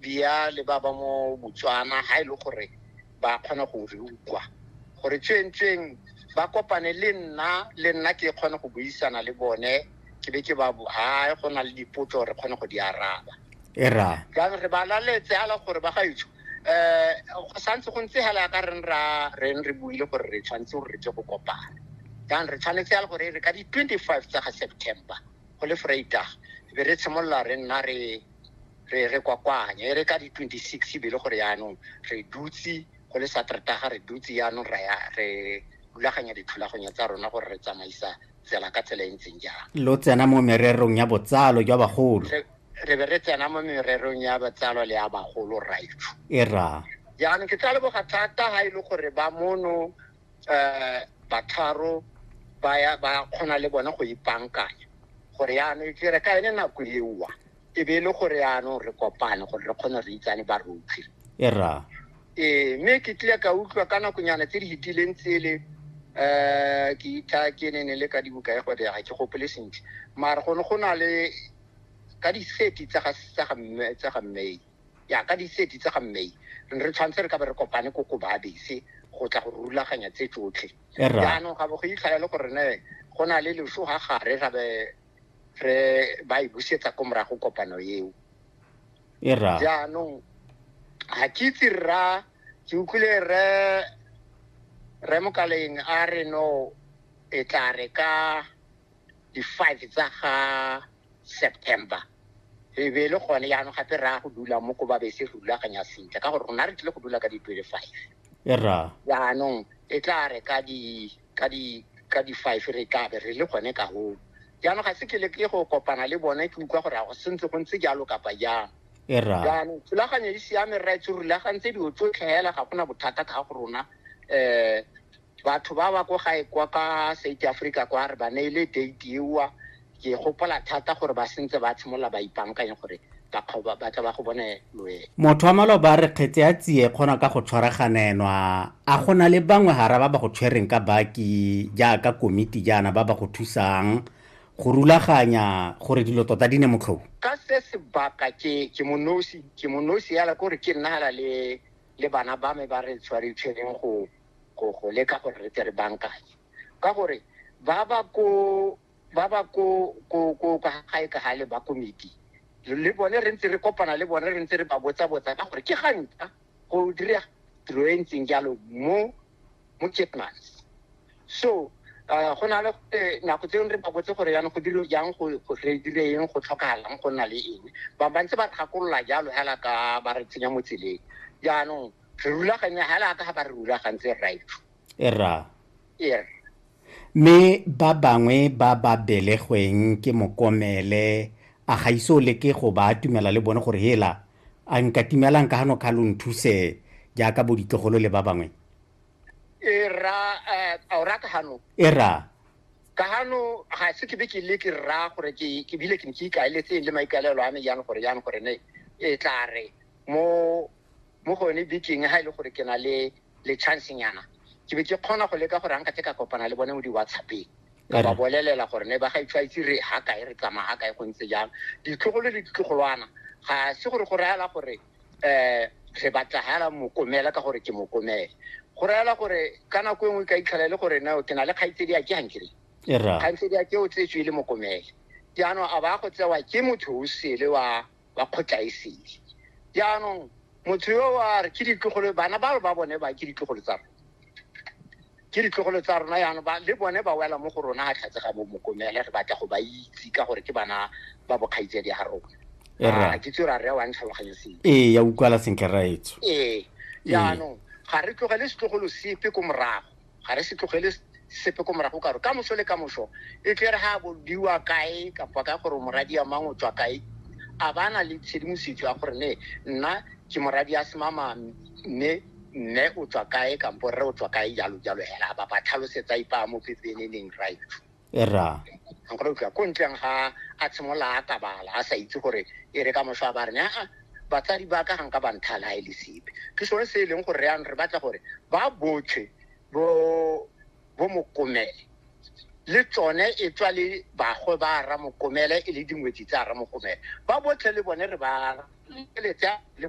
bia le ba ba mo Botswana ha e le gore ba kgona go re utlwa gore tsweng-tsweng ba kopane le nna le nna ke kgone go buisana le bone ke be ke ba ha go na le dipotso re kgone go di araba era jang re ba laletse ala gore ba gaetsho eh go santse go ntse hela ka reng ra reng re buile gore re tshwanetse gore re tle go kopana jang re tshwanetse ya gore re ka di 25 tsa ga September go le Vrydag be re tshimolola re nna re re re kwakwanya e re ka di 26 e be le gore yaanong re dutse go le satertaga re dutse yaanong ra ya re rulaganya dithulaganyo tsa rona gore re tsamaisa tsela ka tsela e ntseng jang lo tsena mo mererong ya botsalo jwa bagolo re re be re tsena mo mererong ya botsalo le ya bagolo raitsho e ra jaanong ke tla leboga thata ga e le gore ba mono um batharo ba ya- ba kgona le bone go ipankanya gore yaanong ke re ka ene nako ewa e be e le gore yaanong re kopane gore re kgone re itsane ba rotlhe e ra ee mme ke tlile ka utlwa ka nakonyana tse di fetileng tsele um ke itha ke ne ne le ka dibuka ya gode ga ke gopole sentle mare go ne go na le ka diseti tsa ga tsa ga mme tsa ga mmei ya ka diseti tsa ga mmei re ne re tshwanetse re ka be re kopane ko ko babese go tla go rulaganya tse tsotlhe e ra jaanong ga bo go itlhaya le gore ne go na le leso ga gare ra be re ba e busetsa ko morago kopano eo e ra jaanong ga ke itse rra ke utlwile re re mokaleng a re no e tla re ka di-five tsa ga september e be e le gone jaanong gape raya go dula mo ko babese re rulaganya sentle ka gore rona re tlile go dula ka di-twenty-five e ra jaanong e tla re ka di ka di ka di five re tlabe re le gone ka hoo jaanong ga se ke le ke go kopana le bone ke utlwa gore a go sentse go ntse jalo kapa jang e jaanong thulaganyo e siame rra itse rulagantse dilo tsotlhe fela ga gona bothata ka go rona um batho ba ba ko gae kwa ka south africa kwa re ba neile date ewa ke gopola thata gore ba sentse ba tshimolola ba ipankanye gore bakgaba ba tla ba go bone loe motho wa maloba re kgetse ya tsie kgona ka go tshwaraganenwa a go na le bangwe gara ba ba go tshwereng ka baki jaaka komiti jaana ba ba go thusang go rulaganya gore dilo tota di ne motlhobo ka se sebaka ke ke monosi ke monosi yala kore ke nna hala le le bana ba me ba re tshware tshwereng go go go leka gore re tle re bankanye ka gore ba ba ko ba ba ko ko ko ka gae ka gale ba komiti le bone re ntse re kopana le bone re ntse re ba botsa botsa ka gore ke ga nka go dira tiro e ntseng jalo mo mo Kitmans so uh, go na le eh, nako tse re ba botse gore yana go dilo jang go go- re dire eng go tlhokagalang go nna le eng ba ba ntse ba gakolola jalo hela ka ba re tsenya mo tseleng jaanong re rulaganya hela ka ga ba re rulagantse right e ra yes mme ba bangwe ba ba belegweng ke mokomele a ga ise o leke go ba atumela le bone gore hela a nka timelang ka gano kga lo nthuse jaaka bo ditlogolo le ba bangwe e ra eh, a o ra ka gano e ra ka gano ga se ke be ke le ke ra gore ke ke bile ke ntse ikaeletseng le maikaelelo a me jang gore jang gore ne e tla re mo mo gone bekeng ga e le gore ke na le le chance nyana ke be ke kgona go leka gore anka tse ka kopana le bone mo di-whatsappeng ka ba bolelela gore ne ba ga itshwaitse re ha kae re tsamaya ga kae go ntse jang ditlogolo le ditlogolwana ga se gore go rayala gore um re batla hela mokomela ka gore ke mokomele go rayala gore ka nako e nngwe ka itlhela e le gore nao ke na le kgaitsedi a ke gankere kgaitsedi a ke o tsetswe e le mokomele jaanong a ba go tsewa ke motho o sele wa ba kgotlaesele jaanong motho yo wa re ke ditlogolo bana ba ba bone ba ke ditlogolo tsa rona ke ditlogolo tsa rona yana ba le bone ba wela mo go rona ga tlhatse ga bomokomele re batla go ba itse ka gore ke bana ba bokgaitse di ga rona ah, ke tse ra re wa ntlhaloganye seng ee ya utlwala sentle raetso ee jaanong ga re tlogele setlogolo sepe ko morago ga re se tlogele sepe ko morago karo ka moso le ka moso e tle re ga bodiwa kae kapa ka gore moradi ya mang o tswa kae a ba na le tshedimosetso ya gore ne nna ke moradi ya semama mme mme o tswa kae kampo rre o tswa kae jalo jalo hela ba ba tlhalosetsa ipa mo pepeneneng right ra nkgona utlwa ko ntleng ga a tshimolola a kabala a sa itse gore e re ka moso a ba re aa batsadi ba ka ga nka banthala ga e le sepe ke sone se e leng gore re yang re batla gore ba botlhe bo bo mokomele le tsone e tswa le bagwe ba ramokomele e le dingwetsi tsa ramokomele ba botlhe le bone re ba eletse le